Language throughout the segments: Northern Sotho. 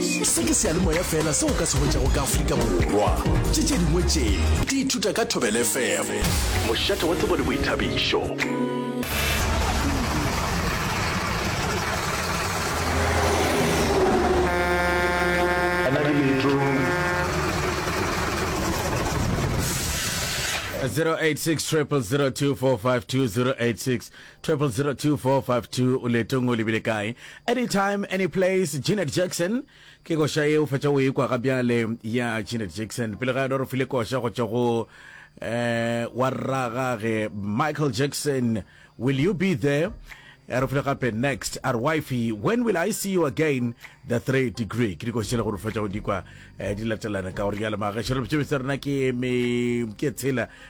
se ke seyalemoya fela se o ka se hwetšago ka afrika borwa tše tše dingwe tše di ithuta ka thobele fm mošate wa tsebo le boithabišo 002452 o leetong o lebile kae anytime any place janet jackson ke koša ye o fetša o ekwa ga bjale ya janet jackson pele ga yona re file koša go tšwa go eh, wa rragage michael jackson will you be there Eh, re file gape next a re wifey when will i see you again the three degree ke dikošele gore fetša go dikwa eh, di latelana ka gore jale magaešo re botšebetsa rena ke me- ke tshela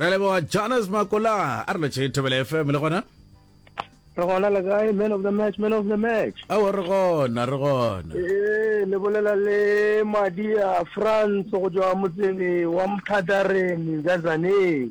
Re leboga Jonas Makola a re letše Thobela FM le gona. Re gona le kae man of the match man of the match. Ao re gona re gona. Eh le bolela le Madia France go tswa motseng wa Mthatareng Zazaneng.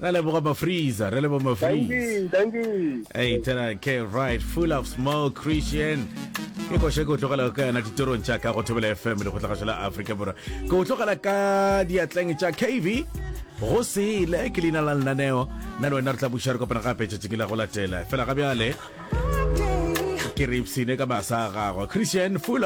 Re leboga Mafreeza, re leboga Mafreeze. Thank you. Hey, tena ke right full of smoke Christian. Ke go sheko tlogela ka yana ditorong tša ka go thobela FM le go tlaga la Africa Borwa. Go tlogela ka diatleng tša KV. Go sele ke lina la lenaneo. Na le wena re tla buša re kopana gape tšatšing la go latela. Fela ga bjale ke re ipsine ka masa a gagwe. Christian full